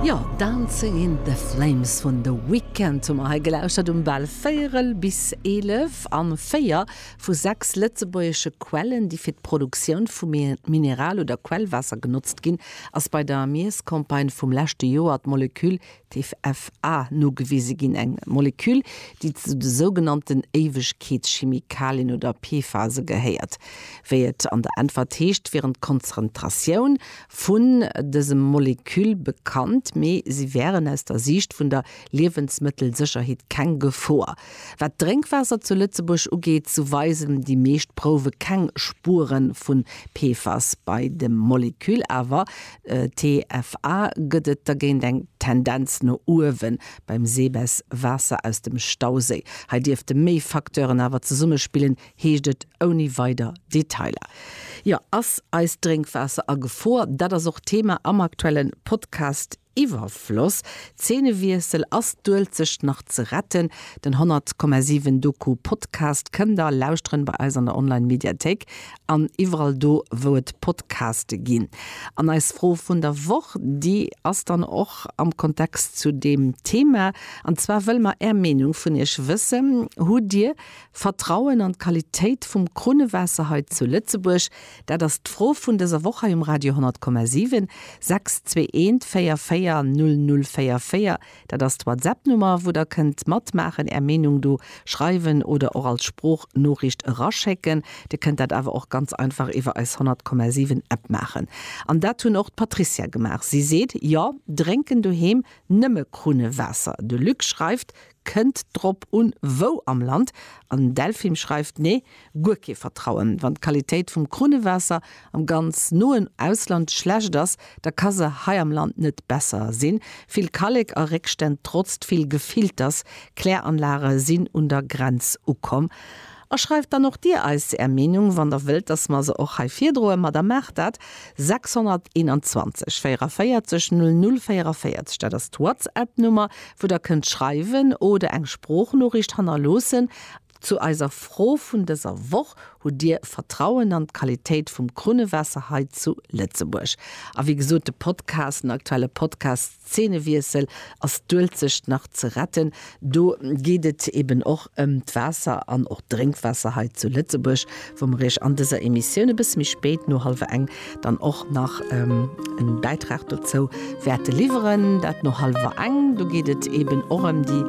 Jo, Dancing in the Flames vun The Weeknd hu mer hei gelauschtert um bal véierel bis eelef. An véier vu sechs lëtzebuergesche Quellen, déi fir d'Produktioun vu Mineral oder Quellwaasser genotzt ginn, ass bei der Miesscampagne vum leschte Joer d'Moleküll TFA, nogewise ginn, eng Moleküll, déi zu de sougenannten Éiwegkeetschimikalien oder PFASe gehéiert. Wéi et an der Äntwert heescht, wieren d'Konzrentratioun vun dësem Moleküll bekannt, mee si wären aus der Siicht vun der Liewensmëttelsécherheet keng Gefor. Wat d'Drénkwaasser zu Lëtzebuerg ugeet, sou weisen déi meescht Prouwe keng Spuere vu PFAS, bei dem Moleküll awer TFA gëtt et dergéint eng Tendenz no uewen beim Seebess Waasser aus dem Stauséi. Hei dierfte méi Facteuren awer zesummespillen, heescht et ouni weider Detailer. Jo, ass eist Drénkwaasser a Gefor? Dat ass och Thema am aktuelle Podcast Iwwerfloss. Zeenewiessel, Ass d'Uelzecht nach ze retten? Den 100,7 Doku-Podcast kënnt der lauschteren bei eis an der Online-Mediathéik. an iwwerall do wou et Podcaste ginn. An eis Fro vun der Woch, déi ass dann och am Kontext zu deem Thema, an zwar wëlle mer är Meenung vun iech wëssen, Hutt dir Vertrauen an d'Qualitéit vum Krunnewaasser hei zu Lëtzebuerg? Dat ass d'Fro vun dëser Woch hei um Radio 10,7, 6214 44 004 44. Dat ass d'Whatsapp-Nummer, wou der kënnt matmaachen, är Meenung do schreiwen oder och als Sproochnoriicht eraschécken. Dir kënnt dat awer och ganz einfach iwwer eis 100,7 App maachen. An dat hunn och d'Patricia gemaach. Si seet, Jo, drénken doheem nëmme Krunnewaasser. De Luc schreift, Kënnt drop un, wou am Land. An Delphim schreift, Nee, guer kee Vertrauen. Wann d'Qualitéit vum Krunnewaasser am ganz noen Ausland schlecht ass, da ka se hei am Land net besser sinn. Vill Kallek a Réckstänn trotzt vill Gefilters. Kläranlage sinn un der Grenz ukomm. A schreift dann och Dir eis Är Meenung, wann Der wëllt, dass mer se och hei virdroen. Ma da maacht dat. 621 44 00 44, dat ass d'Whatsapp-Nummer, wou Der kënnt schreiwen oder eng Sproochnoriicht hannerloossen. Zu eiser Fro vun dëser Woch, Hutt Dir Vertrauen an d'Qualitéit vum Krunnewaasser hei zu Lëtzebuerg? A wéi gesot, de Podcast, den aktuelle Podcast Zeenewiessel, Ass d'Uelzecht nach ze retten? do geet et eben och ëm d'Waasser an och d'Drénkwaasser hei zu Lëtzebuerg. wou mer iech an dëser Emissioun e bësse méi spéit, no hallwer eng, dann och nach e Bäitrag dozou wäerte liwweren. Dat no hallwer eng, do geet et eeben och ëm déi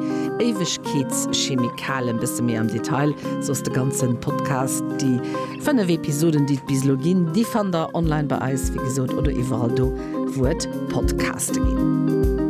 Éiwegkeetschemikalen, e bësse méi am Detail. Soss de ganze Podcast, déi fënnef Episoden, déi et bis elo ginn, déi fannt der online bei eis, wéi gesot, oder iwwerall do, wou et Podcaste ginn.